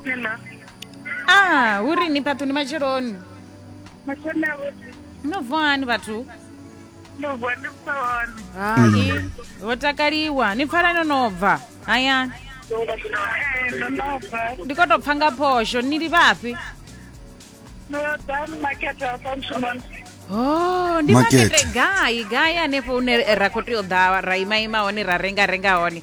Hello. ah hu rini fhaṱu ndi matsheloni Mashona vhuḓi. no bva hani vhathu Ndo bva ndi bva hone. hai ho takaliwa ni pfala no no bva hayani Eh, ndo no bva. ndi khou tou pfa nga phosho ni li vhafhi Ndo ḓa makete wa fha mushumoni. Oh, ndi Makete. makete gai gai hanefho hune ra khou tea u ḓa ra ima ima hone ra renga renga hone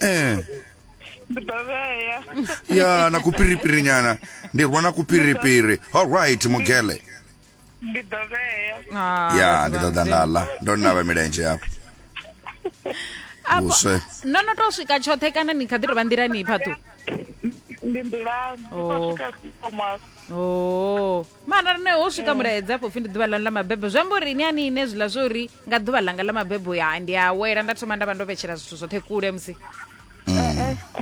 eh. ya na kupiripiri nyana ndi rwa na kupiripiri all right mugele ndi ḓo vhea Ah, ya vhathu ndi vha ṱoḓa nda ḽa ndo navha milenzhe yafho Afho- vhuswe no no to swika tshoṱhe kana ni kha ḓi tovha nḓilani phaṱhu ndi nḓilani ndi Oh. khou swika thomas o mara rine ho swika mulaedza afho pfi ndi ḓuvha lanu ḽa mabebo zwi amba uri ni ani ine zwiḽa zwo uri nga ḓuvha ḽanga ḽa mabebo ya ndi a wela nda thoma nda vha ndo vhetshela zwithu zwoṱhe kule musi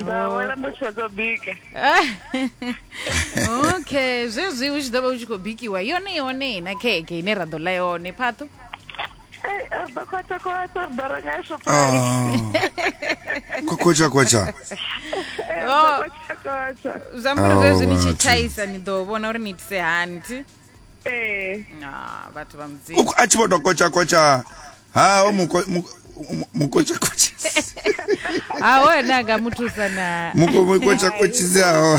ndawela ndo tshedzo bika okay zwezwi u tshi ḓo vha u tshi khou bikiwa yone yone na kheke ine ra ḓo ḽa yone phaṱho ḓo khwatsha khwatsha ri ḓo renga shopa Ah. Kokocha kocha. Oh, khwatsha khwatsha zwi amba uri Au, zwezwi ni tshi vhathu. tshaisa ni ḓo vhona uri ni itise hani thi ee Ah, vhathu vha mudzimu Uku- a tshi vho to kotsha kotsha ha o muko muko- mu- mukotsha kotsha ha one a nga mu thusa na muko mukotsha kotshizi aho u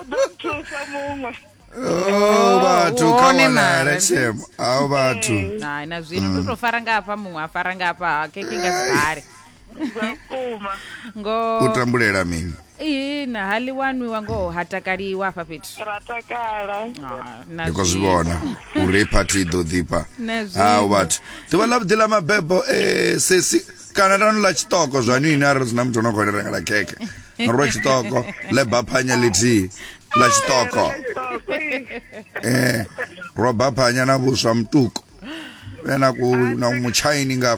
ḓo nthusa muṅwe oh vhathu kha one wanala mara. shemo aho vhathu hai na zwino ndo to fara nga hafha muṅwe a fara nga hafha ha keke nga sibale vhukuma ngoho u tambulela mini ihina ha ḽi wanwiwa ngoho ha takaliwa hafha fhethu ra takala Ah, na ndi khou zwi zwi- vhona uri phathi i ḓo ḓifha Na hau zwiṅwe. vhathu ḓuvha ḽa vhuḓi ḽa mabebo eh, sesi kana lanu ḽa tshiṱoko zwa nini arali zwi na muthu ono khou ni rengela khekhe ro tshiṱoko leba phanya lithihi ḽa tshiṱoko eh, ro baphanya na vhuswa mutuku vhe na ku- na mutshaini nga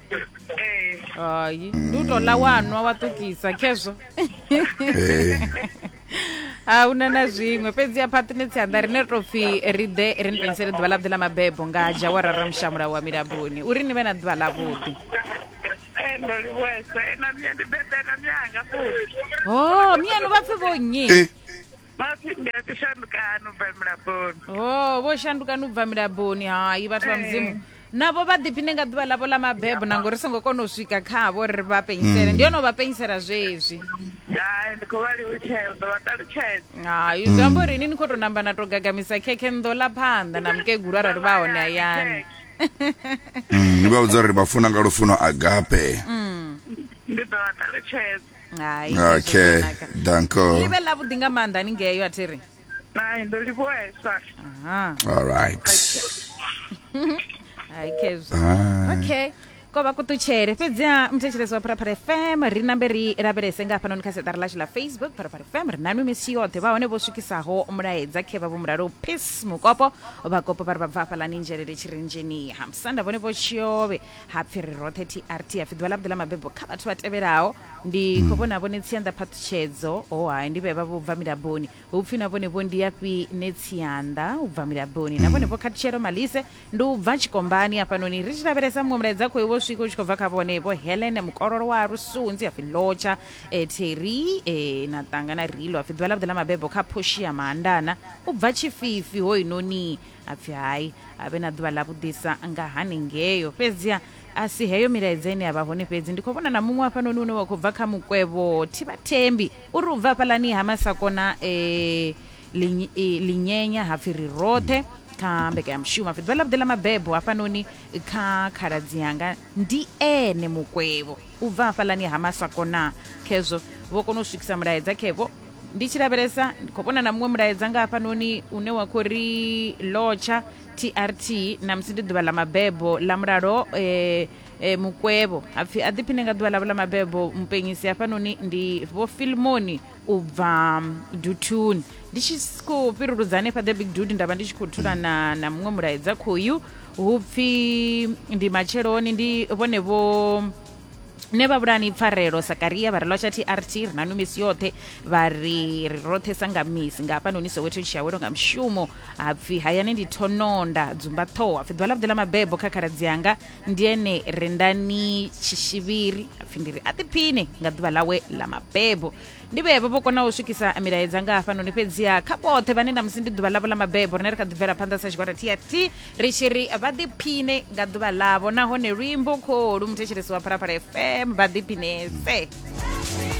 hayi ndi u tou ḽa wa nwa wa ṱukisa khezwo Eh, a una na zwiṅwe fhedzi ya phaṱine tsianda rine tou pfhi ri ḓe ri ni pensele ḓuvha ḽaḓe ḽa mabebo nga dzhawara ra mushamula wa milamboni uri ni vhe na ḓuvha ḽavhuḓi Eh, ndo livhuesa ena miya ndi bebela miyanga futhi ho miyanu vha pfhi vho nnyi eh, Mafhi ndi a shandukano bva mulaboni. Oh, vho shandukani u bva milaboni. Hai, vhathu vha mudzimu. Navho vha ḓiphine nga ḓuvha ḽavho ḽa mabebo na ngori songo kona u swika khavho ri vha penyisele. Ndi hone u vha penyisela zwezwi. Hai ndi khou vha livutshela ndo vha ṱalutshedza. Hai, zwi amba uri ini ni khou tou namba na tou gagamisa khekhe ndo ḽa phanḓa na mukegulu arali vha hone hayani. Mm, ni vha vhudza uri vha funa nga lufuno agape Ndi ḓo vha ṱalutshedza. Hai. hezwo okay zwanaka. danko Ni vhe ḽa vhuḓi nga maanḓa ni ngeyo athi ri. Hai, ndo livhuhesa. Aha. all right Hai khezwo. Ah. okay ko vha kuṱutshele fhedziha muthetshelesi wa pharapara fm ri nambe ri lavhelese nga hafhanoni kha seṱari lashu ḽa facebook pharapara fm ri nanu misi yoṱhe vha hone vho swikisaho mulaedza khevha vho mulalo peace mukopo vhakopo vha ri vha bva hafhaḽani nzhelele tshirinzheniha musanda vhone vho tshiove ha pfi ri roṱhe trt ha pfi ḓuvha ḽa vhuḓi ḽa mabebo kha vhathu vha tevhelaho ndi hmm. khou vhona vhone tsianda phaṱhutshedzo o oh, hai ndi vhe vha vho bva milaboni hu pfi na vhone vho ndi yafhi ne tsianda u bva milaboni na vhone hmm. vho khathutshelo malise ndi u bva tshikombani hafhanoni ri tshi lavhelesa muṅwe mulaedza khoi wo swika u tshi khou bva kha vhone vho helene mukololo wa rusunzi hapfi lotsha e, theri e, na ṱangana rilo hapfi ḓuvha ḽa vhuḓi ḽa mabebo kha phoshi ya maandana u bva tshififi hoinoni a pfi hai a vhe na ḓuvha ḽa vhuḓisa nga haningeo fhedziha a si heyo milaedza ine ya vha hone fhedzi ndi khou vhona na muṅwe hafhanoni une wa khou bva kha mukwevho thivhathembi u ri u bva hafhalani ha masakona um linyenya ha pfi ri roṱhe kha mbekanyamushumo pfi ḓuvha ḽa vhuḓi ḽa mabebo hafhanoni kha khaladzi yanga ndi ene mukwevho U bva hafhaḽani ha maswako na khezwo vho kona u swikisa mulaedza khevho. Ndi tshi lavhelesa ndi khou vhona na muṅwe mulaedza nga hafhanoni une wa khou ri lotsha trt na musi ndi ḓuvha ḽa mabebo ḽa mulalo e, e, mukwevho hapfi a ḓiphiṋe nga ḓuvha ḽavho ḽa mabebo mupenyisi hafhanoni ndi vho filmoni u bva mm, duthuni ndi tshi s- khou fhiruludza hanefha the big dude nda vha ndi tshi khou thula na, na muṅwe mulaedza khoyu hu pfi ndi matsheloni ndi vhone vho ne vha vhulani pfarelo sakaria vha ri lwa tsha trt ri nanu misi yoṱhe vha ri ri roṱhe sa nga misi nga hafhanoni soweto tshiyawelo nga mushumo hapfi hayani ndi thononda dzumba ṱhoho hapfi ḓuvha ḽavhuḓi ḽa mabebo kha khaladzi yanga ndi ene rendani tshishivhiri apfi ndi ri a ḓiphine nga ḓuvha ḽawe ḽa mabebo ndi vhevho vho kona u swikisa milaedza nga hafhanoni fhedziha kha vhoṱhe vhane na musi ndi ḓuvha ḽavho ḽa mabebo rine ri kha ḓi bvela phanḓa sa tshigwada trt ri tshi ri vha ḓiphine nga ḓuvha ḽavho nahone luimbo kholu muthetshelesi wa phalaphala fm vha ḓiphinese